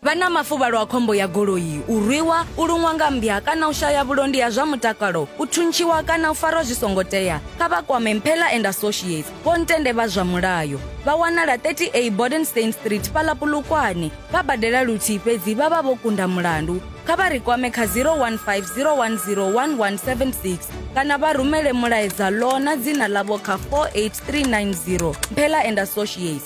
vha na mafuvhalo a khombo ya goloi u rwiwa u luṅwa nga mmbya kana u shaya vhulondi ha zwa mutakalo u thuntshiwa kana u farwa zwi songo tea kha vha kwame mphela and associates vho ntende vha zwa mulayo vha wanala 30a bodenstein street fhaḽa pulukwane vha badela luthihi fhedzi vha vha vho kunda mulandu kha vha ri kwame kha 0150101176 kana vha rumele mulaedza ḽo na dzina ḽavho kha 48390 mphela and associates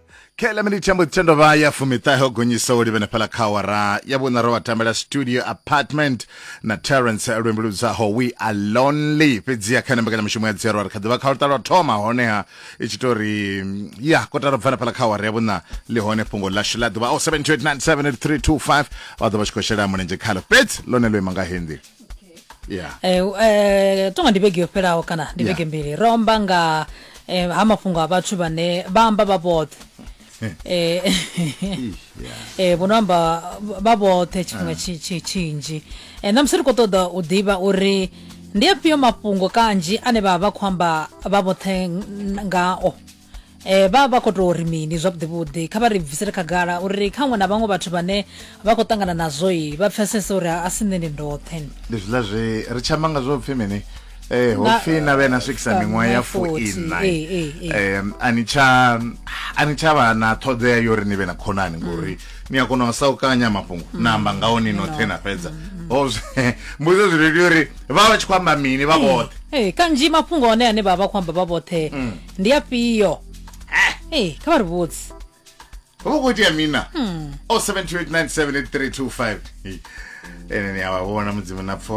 khaela miniti ya mboḓi tendo vha ya fumiṱahe o gonyisa u livhene fhala kha awara ya vhuṋa ro vha tambela studio apartment na terence lwimbi ludzaho we are lonely fhedzi ya kha ene mbekanyamushumo ya dzero ri kha ḓivha kha luṱa lwa thoma honeha i tshi tou ri ya kotara bvana fhala kha awara ya vhuṋa ḽi hone fhungo ḽashu ḽa ḓuvha o 728978325 vha ḓo vha tshi khou shela mulenzhe khalo fhedzi ḽone ḽo ima nga hendi yeah Eh, eh, tonga ndi vhege yo fhelaho kana ndi Yeah. vhege mbili ro amba nga eh, ha mafhungo a vhathu vhane vha amba vha vhoṱhe Eh, Ish, yeah eh, vho no amba vha vhoṱhe tshifhinga tshi- tshi- tshinzhi Eh, na musi ri khou ṱoḓa u ḓivha uri ndi afhio mafhungo kanzhi ane vha vha vha khou amba vha vhoṱhe ng- ngao eh vha vha khou tou ri mini zwavhuḓivhuḓi kha vha ri bvisele khagala uri kha ṅwe na vhaṅwe vhathu vhane vha khou ṱangana nazwo i vha pfesese uri a si nṋe ndi ndoṱhe ndi zwiḽa zwi ri tshi amba nga zwo pfhi mini eh ho pfhi na vhe na swikisa sa miṅwaha ya miṅwaha 40, fuiṋa eh, eh, eh. um a ni tsha a ni tsha vha na ṱhoḓea yo uri ni vhe na khonani ngori ni a kona u sa u kanya mafhungo na amba ngaho ni noṱhe na fhedza ho zwe- mbudzo zwi lelio uri vha vha tshi khou amba mini vha vhoṱhe Eh, kanzhi mafhungo one ane vha vha khou amba vha vhoṱhe ndi afhio hey, kha vha ri vhudzi ho vha khou itea mina o 728978325 ene ni a vha vhona mudzimu na pfo